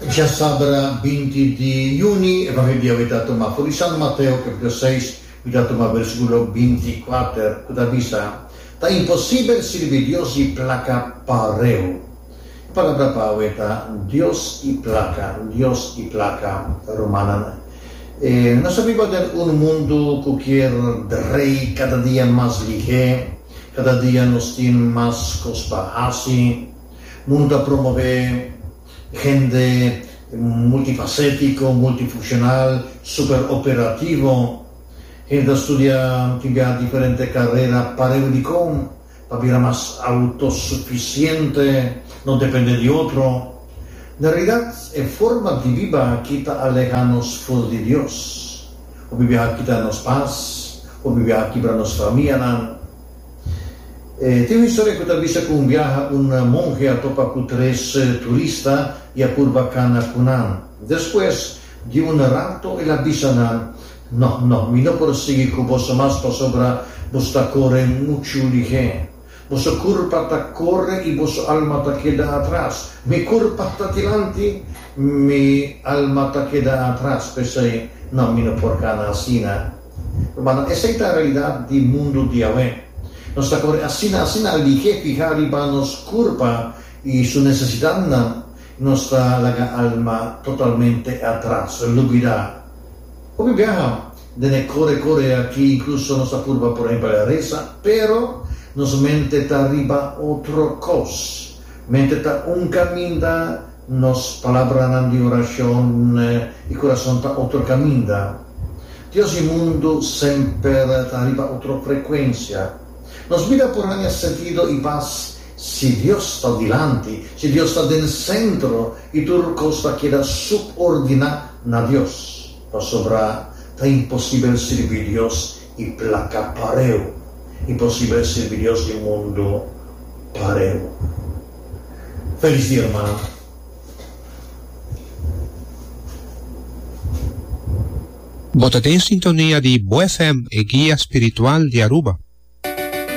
Dja sabra binti di juni e papia dia mi ta tuma puru di San Mateo kapitulo seis mi ta tuma bersikulo binti i kuater ku ta bisa, Ta imposibel sirbi Dios i plaka pareu. E palabra pawe ta Dios i plaka, Dios i plaka. Rumannan, nos ta biba den un mundu ku kier drei kada dia mas lihé, kada dia nos tin mas kos pa hasi. Mundo ta promové hende multifasetico, multifuncional, super operativo. Hende ta studia tin bia diferente carera pareu di con pa bira mas autosuficiente, no depende di otro. Na realidad e forma di biba aki ta aleha nos full di Dios. Hopi biaha kita nos paz, hopi biaha kibra nos famianan. E tin un historia cu ta bisa cu un biaha un monhe a topa cu tres turista y a purba cana cu nan. Despues di un rato el a bisa nan, No, no, mi no por sigui cu boso mas pasobra boso ta core muchu lihé. Boso curpa ta core y boso alma ta keda atras. Mi curpa ta dilanti, mi alma ta keda atras. P'esey, no, mi no por cana asina. Pasobra esei ta realidat di mundu di awe. Nos ta kore asina asina alihé fihá riba nos kurpa i su nesesidatnan, nos ta laga alma totalmente atras, lubidá. Hopi biaha den e kore kore aki inkluso nos ta purba por empel resa, pero nos mente ta riba otro kos. Mente ta un kaminda. Nos palabranan di orashon i kurason ta otro kaminda. Dios i mundu semper ta riba otro frekuensia. Nos bida por haña sentido i pas si Dios ta dilanti, si Dios ta den sentro i tur kos ta keda subordiná na Dios. Pasobra ta imposibel sirbi Dios i plaka pareu, imposibel sirbi Dios i mundu pareu. Feliz Dia Hermano. Bo ta den sintonia di Bo FM, e guia spiritual di Aruba.